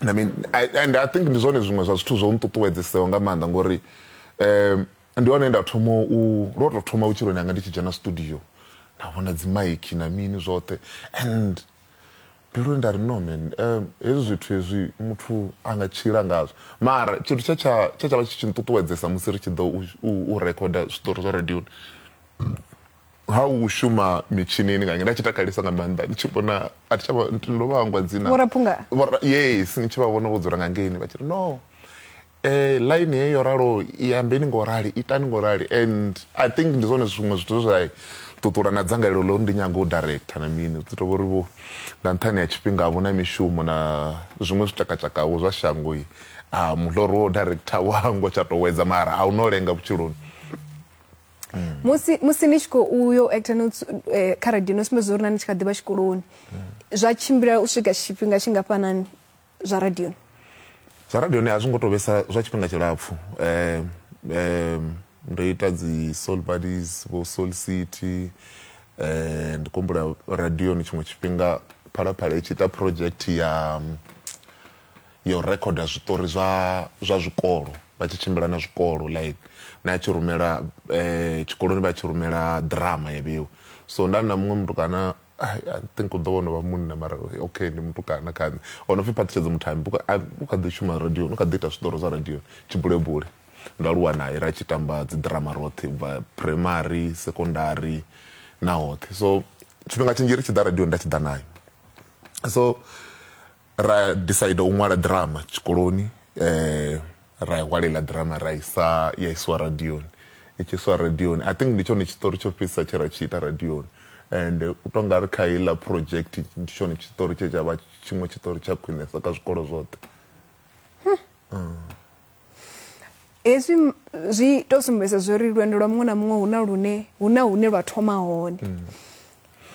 I mean and I think ndi zwone zwiṅwe zwa zwithu zwo nṱuṱuwedzeseo nga maanḓa ngori um ndi hone nda thoma u ndo tou thoma vhutshiloni hanga ndi tshi dzhena studio nda vhona dzimaiki na mini zwoṱhe and mbiluni nda ri no man um hezwi zwithu hezwi muthu a nga tshila ngazwo mara tshithu tshe tsha tshe tsha vha tshi tshi nṱuṱuwedzesa musi ri tshi ḓo u recorda zwiṱori zwa radioni ha u shuma mitshinini nga nda tshi takalesa nga maanḓa ndi tshi vhona a thi tshavha ndo vha hangwa dzina vhoraphunga yes ni tshi vha vhona vho dzula nga ngeini vha tshi ri no eh line heyo yo ralo i ambeni ngo rali itani ngo rali and i think ndi zwone zwiṅwe zwithu zwa ṱuṱula na dzangalelo ḽo ndi nyago u director na mini zwi tovhori vho nga nṱhani ha tshifhinga vho na mishumo na zwiṅwe zwitakatshakaho zwa shango i a muḓoro wo director wango tsha to wedza mara a u no lenga vhutshiloni mm. musi musi ni tshi kho uyo actor no eh, kha radio no sumbedza uri na ni tshi kha ḓivha tshikoloni mm. zwa tshimbila u swika tshifhinga tshingafhanani zwa radio zwa radio ni a zwi ngo tou vhesa zwa tshifhinga tshilapfhu um um ndo ita dzi soul buddies vho soul city um ndi kumbula radio ni tshiṅwe tshifhinga phalaphala i tshi ita project ya um, ya u rekhoda zwiṱori zwa zwa zwikolo vha tshi tshimbila na zwikolo like na a tshi rumela eh, tshikoloni vha tshi rumela drama ya vheiwa so nda na muṅwe mutukana I think u ḓo vha no vha munna mara okay ndi mutukana kha nṋe o no pfhi phaṱhutshedzo muthambi u kha ḓi shuma radio u kha ḓi ita zwiṱori zwa radio tshibulebule ndo aluwa naye ra tshi tamba dzi drama roṱhe ubva primary secondary na hoṱhe so tshifhinga tshinzhi ri tshi ḓa radio nda tshi ḓa nayo so ra decide u ṅwala drama tshikoloni um ra i ṅwala iḽa drama ra isa ya isiwa radioni i tshi isiwa radioni i think ndi tshone tshiṱori tsho fhedzisa tshe ra tshi ita radioni and u tonga ri kha iḽa project ndi tshone tshiṱori tshe tsha vha tshiṅwe tshiṱori tsha khwinesa kha zwikolo zwoṱhe hmm. hezwi zwi to sumbedza zwori lwendo lwa muṅwe na muṅwe hu na lune hu na hune lwa thoma hone mm.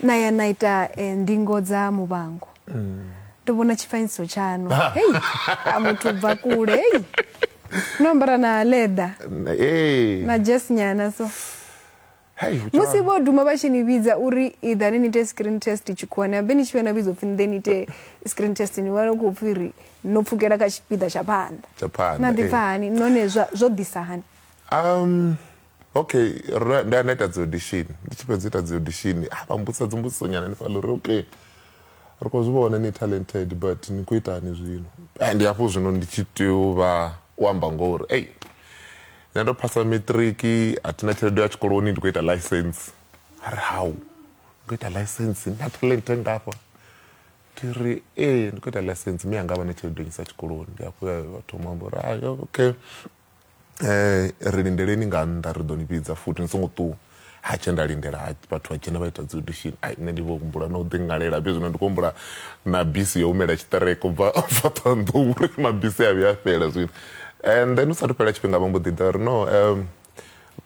na ya na ita eh, ndingo dza muvhango mm. ndo vhona tshifanyiso tshaṋu hei a muthu bva kule hei no ambara na leather na jes nyana so Hey, musi vho duma vha tshi ni vhidza uri iḓani ni ite screen test tshikhuwani habe ni tshi vha na vhidza upfhi nḓe ni ite screen test ni vha khou pfhi ri no pfukela kha tshipiḓa tsha phanḓa na ḓipfa hani none zwo ḓisa hani um okay nda nda ita dzi audition ndi tshi fhedza ita dzi audition a vha mbudza dzi mbudziso nyana ni fhaḽa uri okay Ri khou zwi vhona ni talented but ni khou itani zwino? Ndi hafho zwino ndi tshi tea u vha u amba ngoho uri ei nṋe ndo phasa matric a thina tshelede ya tshikoloni ndi khou ita license. A ri hau ndi khou ita license ni na talent ngafha? Ndi ri ee ndi khou ita license mme anga a vha na tshelede yo nnyisa tshikoloni. Ndi hafho he a thoma u amba uri okay. Eh, ri lindeleni nga nnḓa ri ḓo ni vhidza futhi ni songo ṱuwa ha tshe nda lindela ha vhathu vha dzhena vha ita dzi audition ai nṋe ndi vho humbula na u ḓi ngalela fhe zwino ndi khou humbula na bisi yo humela tshiṱereke ubva ubva ṱhohoyanḓou uri mabisi a vhuya a fhela zwino and then u sathu fhela tshifhinga vha mbo ḓi ḓa ri no um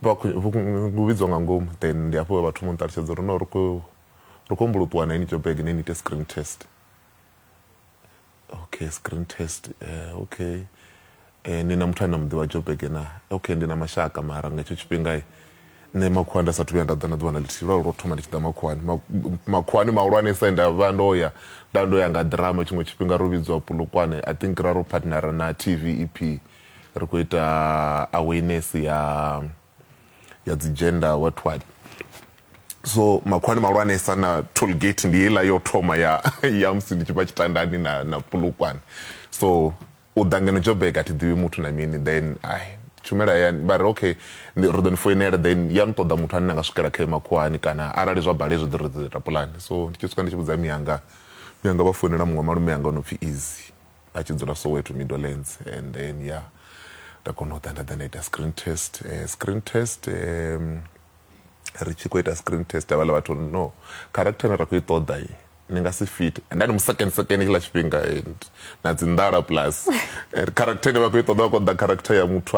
vhu vhidzwa nga ngomu then ndi hafho vhathu mu nṱalutshedza uri no ri khou ri khou humbula u ṱuwa na ini jobege ne ni ite screen test okay screen test uh, okay eh, ni na muthu ane na mu ḓivha jobege na okay ndi na mashaka mara nga hetsho tshifhingai nṋe makhuwani nda sathu vhuya nda ḓa na ḓuvha na ḽithihi lwa lwo thoma ndi tshi ḓa makhuwani makhuwani mahulwanesa nda vha ndo ya nda ndo ya nga drama tshiṅwe tshifhinga ro vhidziwa pulukwane i think ra ro partnera na t v e p ri khou ita awareness ya ya dzi gender what what so makhwani malwanesa na tollgate ndi heiḽa yo thoma ya ya musi ndi tshi vha tshitandani na na pulukwane so u ḓa ngeno joburg a thi ḓivhi muthu na mini then ai tshumela ya vha ri okay ri ḓo ni foinela then ya ni ṱoḓa muthu ane na nga swikela khae makhuwani kana arali zwa bala hezwi ḓo ri ḓo ita pulani so ndi tshi swika ndi tshi vhudza miyanga miyanga vha foinela muṅwe malume yanga o no pfhi easy a tshi dzula soweto middlelands and then ya yeah, nda kona u ḓa nda ḓa nda ita screen test uh, screen test um, ri tshi khou ita screen test avhala vhathu no character ne ra khou i ṱoḓa i ni nga si fit and then musecond second kila tshifhinga and na dzi ndala plus character ne vha khou i ṱoḓa vha khou ḓa character ya muthu